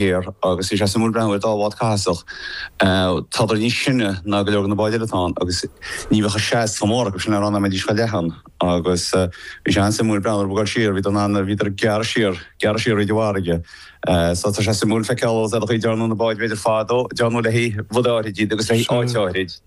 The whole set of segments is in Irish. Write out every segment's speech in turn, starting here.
air agus bhí sé suimiúil breathnú ar dá bhád cathasach. Tádar níos sine ná go leor de na báid eile atá ann agus ní bheadh an seans chomh mór acu sin ar an am a mbeidís chomh leathan agus bhí sé an-suimiúil breathnú orthu ag goil siar, bhíodar in ann, bhíodar ag gearradh siar, gearradh siar fríd an bhfarraige. So tá sé suimiúil feiceáil sea an chaoi a ndearnadh na báid b'fhéidir fadó, dearnadh le haghaidh rud áithrid iad agus le haghaidh áit áithrid.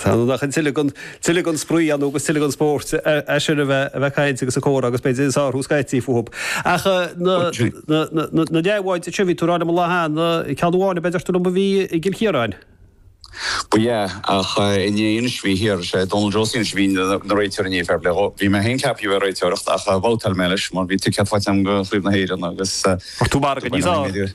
Tá ann ach tuilleadh den tuilleadh den spraoi ann agus tuilleadh den spórt is ann a bheith a bheith ag caint agus ag comhrá agus b'fhéidir ag sárú scaití fúthub. Ach na na na leathbháid seo a bhí tú a rá liom an lá cheana, ceann amháin a dúirt tú liom a bhí i gCill Chiaráin. Ba ea, ach inné anois bhí thiar, sé Donal Josie anois a bhí ina réiteoir inné, fair plé dhó. Bhí mé féin ceaptha bheith ag réiteoireacht ach bhabhtáil mé leis mar bhí ticéad faighte agam do Chraobh na hÉireann agus Bhí tú margadh níos.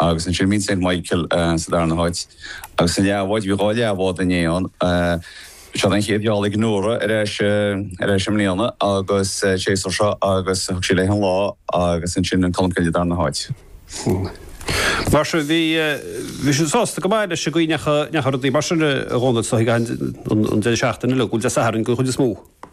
Agus ansin bhí an St Michael sa darna háit. Agus na leathbháid, bhí dhá leathbhád inné ann. Seo an chéad gheall ag Nora ar ais ar ais i mbliana agus an séasúr seo agus thug sí léi an lá agus ansin an Colmcille darna háit. Mar sin, bhí bhí siad sásta go maith leis an gcaoi a ndeachaigh a ndeachaigh rudaí mar sin a Dhónaill siocair an deireadh seachtaine le go bhfuil Dé Sathairn den chuid is mó.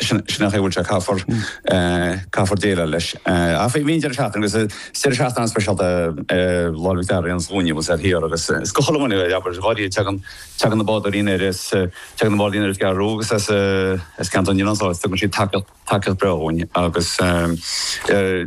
Sin an chaoi a bhfuil sé, caithfear, caithfear déileáil leis. Ach bhí an deireadh seachtaine, agus is deireadh seachtaine an-speisialta é Lá Fhliuch Dearg Aonghus Dhúin, bhí siad thiar agus is go chuile dhuine, abair, dháiríre, a dtagann, tagann na bádóirí anoir as, tagann na bádóirí anoir as an gCeathrú Rua agus as, as Ceantar na nOileán so is tugann siad tacaíocht, tacaíocht bhreá dhúinn agus eh.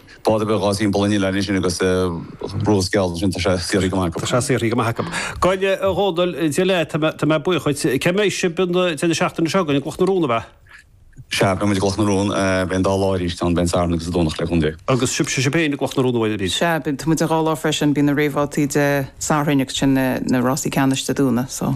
Bád beag atá timpeall an oileáin ansin agus rás geal ansin, tá sé saothraithe go maith acu. Tá sé saothraithe go maith acu. Go deimhin a Dhónaill, Dia leat, tá mé buíoch dhuit. Cá mbeidh sibh an, deireadh na seachtaine seo chugainn, i gCloch na Rón, ab ea? Sea, beidh muid i gCloch na Rón, beidh an dá lá arís ann, beidh an Satharn agus an Domhnach le cúnamh Dé. Agus sibhse, sibh féin, i gCloch na Rón uair arís? Sea, beidh, tá muid an dhá lá freisin, bíonn na réamhbhabhtaí Dé Sathairn agus ansin na rásaí ceannais Dé Domhnaigh, so.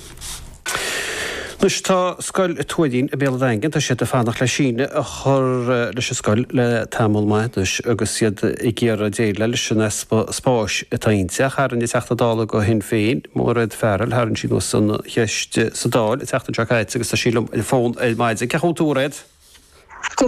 Anois tá Scoil an Tuairín i mBéal an Daingin. Tá siad ag fanacht le síneadh a chur leis an scoil le tamall maith anois agus iad ag iarraidh déileáil leis an easpa spáis atá inti. Ach tharraing an Teachta Dála do Shinn Féin, Mairéad Farrell, tharraing sí anuas an cheist sa Dáil an tseachtain seo caite agus tá sí liom ar an bhfón ar maidin. Sé chugat a Mhairéad? Go